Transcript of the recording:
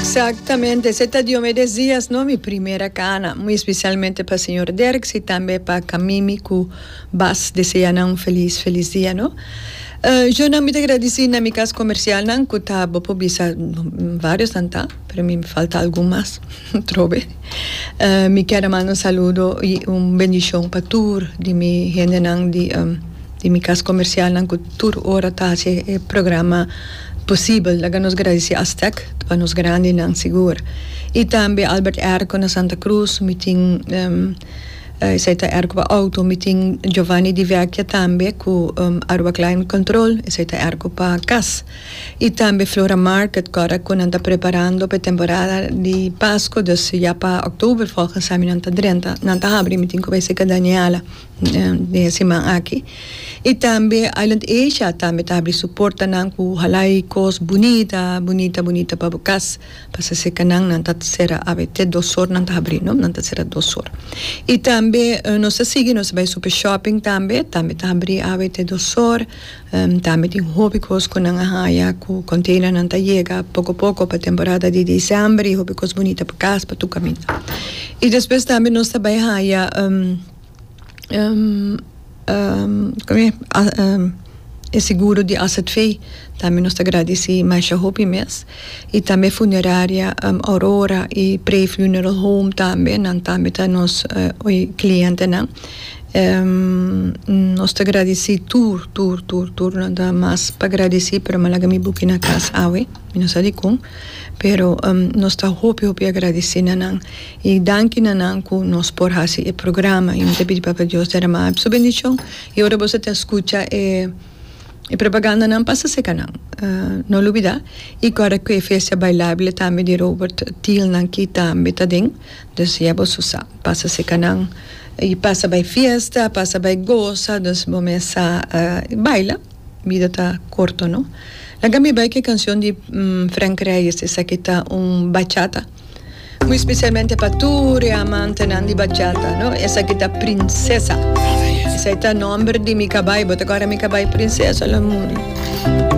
Exactamente, ese ta diome des dias no, mi primera cana, muy especialmente pa señor Derks y tambe pa Camimi cu Bas, desea nan un feliz feliz dia no. Yo nan mi ta gradici na mi cas comercialnan cu ta bo por bisa variosnan ta, pero mi falta algun mas, trobe. Mi kier a manda un saludo y un bendicion pa tur di mi hendenan di di mi cas comercialnan cu tur ora ta haci e programa. Posibel, laga nos gradisí Aztec pa nos grandinan sigur, i tambe Albert Erco na Santa Cruz, mi tin, esei ta Erco pa outo, mi tin Giovanni di Vecchia tambe ku Aruba Climate Control, esei ta Erco pa kas, i tambe Flora Market kòrda ku nan ta preparando pa e temporada di Pasko, dus ya pa October fòlgens esami nan ta drenta, nan ta habri, mi tin ku bai seka Daniela. den e siman aki. Y tambe Island Asia tambe ta habri su portanan cu halai cos bunita, bunita, bunita pa bo cas. Pasa si canan nan ta cera awe te dos hor nan ta habri, no? Nan ta cera dos hor. Y tambe nos ta sigui, nos ta bay Super Shopping tambe, tambe ta habri awe te dos hor. Tambe tin hopi cos cu nan a haya cu containernan ta yega poco poco pa temporada di Diciember y hopi cos bunita pa cas, pa tur caminda. Y despues tambe nos ta bay haya. e seguro di AZV tambe nos ta gradeci masha hopi mes y tambe funeraria Aurora y Prey Funeral Home tambe nan tambe ta nos clientenan nos ta gradeci tur tur tur tur nan ta mas pa gradeci pero mi laga mi buki na cas awe mi no sa dicon pero nos ta hopi hopi agradeci na nan. I danki na nan ku nos por hasi e programa. I mi ta pidi Papa Dios deramá Su bendishon. I ora boso ta skucha e e propagandanan pasa seka nan. No lubidá i kòrda ku e festa bailable tambe di Robert Thiel nan ki tambe ta den. Dus ya boso sa. Pasa seka nan i pasa bai fiesta, pasa bai gosa. Dus bo mesa baila. Bida ta korto, no? Laga mi bai ku e kanshon di Frank Reyes esaki ta un bachata. Muy especialmente pa tur e amantenan di bachata, no? Esaki ta Princesa. Esaki ta nomber di mi cabai. Bo ta acorda mi cabai Princesa, lo muri.